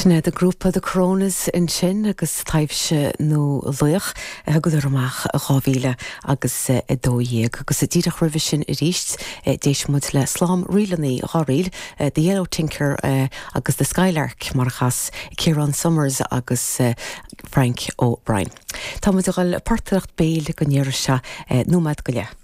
Sin iad an grúpa The Coronas ansin agus Taibhse nó Laoch a thugadar amach 2000 agus 12 agus díreach roimhe sin arís d'éist muid le slám ríleanna dhá ríl, The Yellow Tinker agus The Skylark mar a chas Ciarán Somers agus Frank O'Brien. Tá muid a dhul portaireacht béil go ndeireadh seo nóiméad go leith.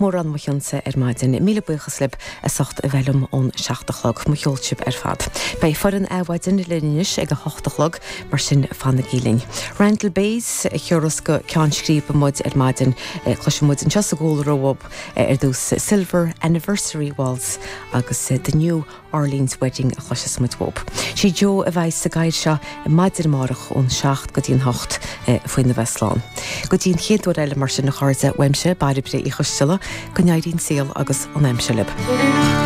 Mórán mo chuidse ar maidin. Míle buíochas libh as ucht a bheith liom ón seacht a chlog. Mo cheol thú ar fad. Beidh foireann Adhmhaidin linn anois ag an hocht a chlog, mar sin fanaigí linn. Randall Bays, a chuirfeas go ceann scríbe muid ar maidin. Cloisfidh muid anseo sa gclár uaidh ar dtús Silver Anniversary Waltz agus The New. Arlene's Wedding a chloiseas muid uaidh. Sí Jo a bheidh sa gcaoi seo ar maidin amárach ón seacht go dtí an hocht faoina bheith slán. Go dtí an chéad uair eile mar sin a chairde uaimse Bairbre Uí Choisteala, go n-éirí an saol agus an aimsir libh.